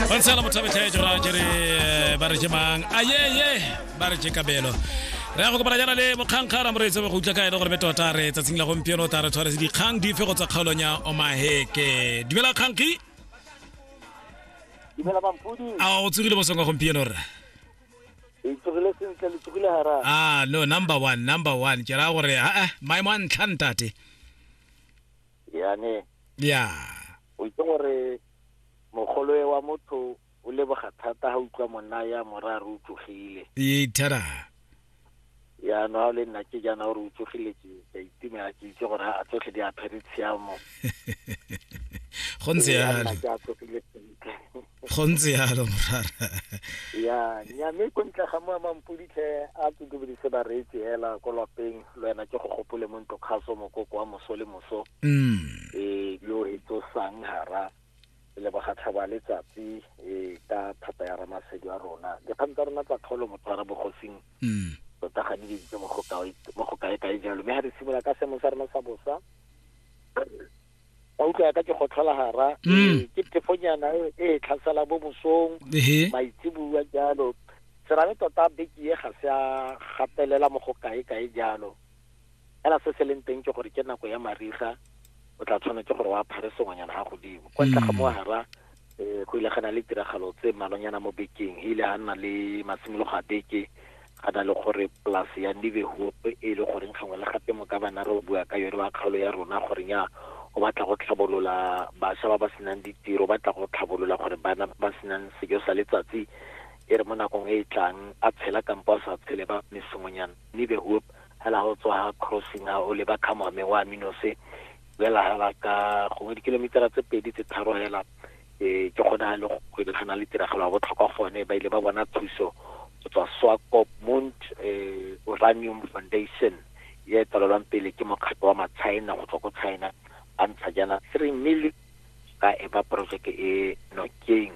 ba ntshela mothabethe jora ke re eh, ba re ke mang ayeye ba re ke kabelo re ya go kopana jana le mokgankga ramoreetse go utlwa ka ene gore be tota re tsatsing la gompieno ta re tshwaretse dikgang dife go tsa kgaolong ya omaheke dumela kgankgi dumela bampudi a o tsogile bosong wa gompieno rra itsogile sentle le tsogile hara ah no number one number one ke raya gore aa maemo a ntlha ntate yane ya o itse gore Mogoloe wa motho o leboga thata ga utlwa monna ya morare o tsogile. Ee, thara. Jaanong ga o le nna ke jaana gore o tsogile ke ka itumela ke itse gore a tsotlhe di apere tshiamo. go ntse yalo ke a tsogile sentle go ntse yalo morara ya nya mme ko ntle ga moa mampuditlhe a tsotobe di se ba reetse hela ko lapeng le wena ke go gopole mo ntlo kgaso mokoko wa moso le moso mm. e yo e tsosang hara le bogatlha ba letsatsi e ka thata ya ramasedi wa rona dikgang tsa rona tsa kgaolo motho wa rabogosing mm. tota ga di dintse mo go kae-kae jalo mme ga re simolola ka seemo sa rona sa bosa ba utlwa ka ke go tlhola gara mm. ke tefonyana e, e tlhasela bo mosong maitsebua jalo serame tota beke e ga se a gatelela mo go kae-kae jalo fela se se leng teng ke gore ke nako ya mariga o tla tshwanetse gore wa phare sengwenyana ga godimo kwa ntle ga mo mm. gara um go ile ga na le tiragalo tse mmalonyana mo bekeng e ile ga nna le masimologo a beke ga na le gore polase ya nebehoop e e le goreng gangwe le gape mo ka bana re bua ka yone ba kgaolo ya rona goreng ya o batla go tlhabolola bašwa ba ba senang ditiro ba tla go tlhabolola gore bana ba senang sejo sa letsatsi e re mo nakong e e tlang a tshela kampo a sa tshele ba mesongonyana nebehoop hela ho tswa ha crossing ha o leba ka moame wa minose bela hela ka gongwe dikilomitara tse pedi tse tharo hela eh ke gona le go lebagana le tiragalo ya botlhokwa gone ba ile ba bona thuso go tswa swakop mund eh uranium foundation ye tswalelwang pele ke mokgatlho wa matshina go tswa ko china ba ntsha jaana three million ka e ba projeke e nokeng